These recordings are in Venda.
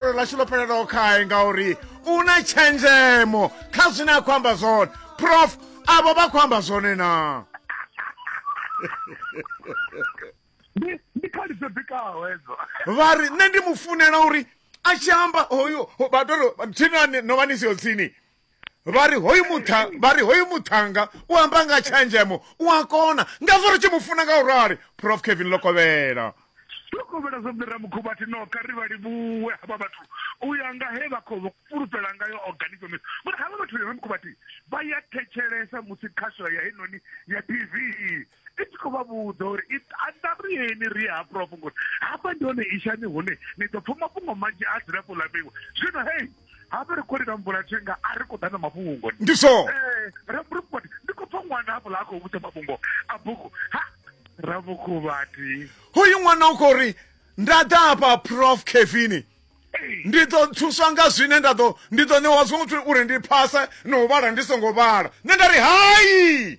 fhulufhelo ḽashu ḽo fhelelaho khae ngauri u na tshenzhemo kha zwine a khou amba zwone prof avho vha khou amba zwone na ndi khadi dzo bikaho hedzo vha ri nṋe ndi mu funela uri a tshi amba hoyo vha tori thinani no vha ni siho tsini vha ri hoyu mutha vha ri hoyu muthanga u amba nga tshenzhemo u a kona ngazwo ri tshi mu funa nga u rali prof kevin lokovhela lokovhela zwo mira mukhubathi no kha ri vha livhuwe havha vhathu u ya nga he vha khou fhulufhela ngayo organization ngori havha vhathu ri mukhubathi vha ya thetshelesa musi khasho ya heinoni ya tv i tshi khou vha vhudza uri i anda ri yeni ri ha prof ngori hafha ndi hone ishani hune ni ḓo pfha mafhungo manzhi a dzilafho ḽa mbingwa zwino hei hafha ri khou lila mvula thenga a ri khou ḓa na mafhungo ngoni ndi so eh, rabukubati ndi khou pfha ṅwana hafho ḽa a khou vhudza mafhungo a bugu ha rabukubati hoyu ṅwana u khou ri nda ḓa hafha prof kevini ndi ḓo thuswa nga zwine nda ḓo ndi ḓo ṋewa zwo uri ndi phase na u vhala ndi songo vhala nṋe nda ri hai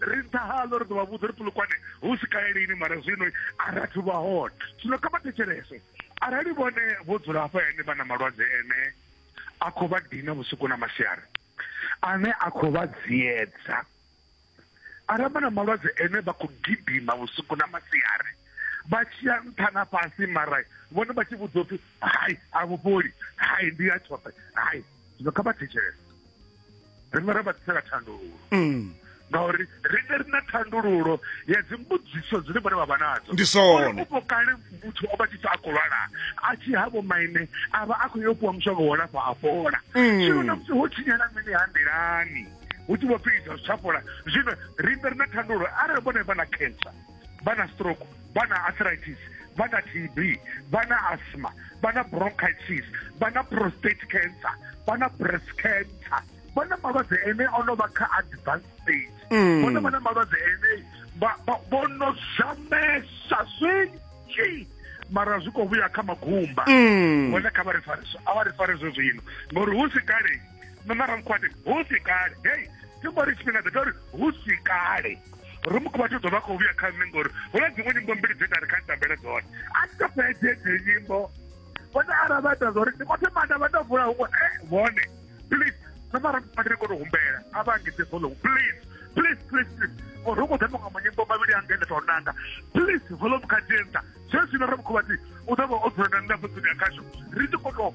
ri nṱha haḽo ri ḓo vha vhudza uri pulukwane hu si kale lini mara zwino a rathu vha hone zwino kha vha thetshelese arali vhone vho dzula hafha ene vha na malwadze ene a khou vha dina vhusiku na masiari ane a khou vha dziedza arali vha na malwadze ene vha khou gidima vhusiku na masiari vha tshiya nṱha na fhasi mara vhone vha tshi vhudzwa upfi hai a vhufholi hai ndi ya tshoṱhe hai zwino kha vha thetshelese riṋe ra vha ḓisela thandululo mm. ngauri riṋe ri na thandululo ya dzimbudziso dzine vhone vha vha nadzo ndi sonepo kale muthu o vha tshi sa a khou lwala a tshi havho maine a vha a khou yo fhiwa mushonga wo lafha a fhola mm. zwino na musi ho tshinyala mini ha nḓilani hu tshi vho pfhi izwa zwi tsha fhola zwino riṋe ri na thandululo arali vhone vha na cancer vha na stroke vha na arthritis vha na tb vha na asthma vha na bronchitis vha na prostate cancer vha na breast cancer vha na malwadze ene o no vha kha advanced stage mm. vhone vha na malwadze ene vho no zamesa zwinzhi mara zwi khou vhuya kha magumba mm. vhone kha vha ri fare a vha ri fare zwo zwino ngori hu si kale no mara mukhwati hu si kale hei ndi mbo ri tshifhinga ḓeta uri hu si kale ri mukhuvhathu ḓo vha khou vhuya kha nṋe ngori hu na dziṅwe nyimbo mbili dze nda ri kha ni tambele dzone a ni to fhedze dze nyimbo vhone ara vha ita zwa uri ndi khothe manda vha tou vula huṅwe e vhone please no mara mukhuvhathu ri kone u humbela a vha angedze volume please please please please ngori hu khou ḓa maṅwe manyimbo mavhili anga ende tou nanga please volume kha dzentsa zwezwino ri mukhuvhathu u ḓo vha o dzula na nṋe fhedzini ya khasho ri tshi khou tou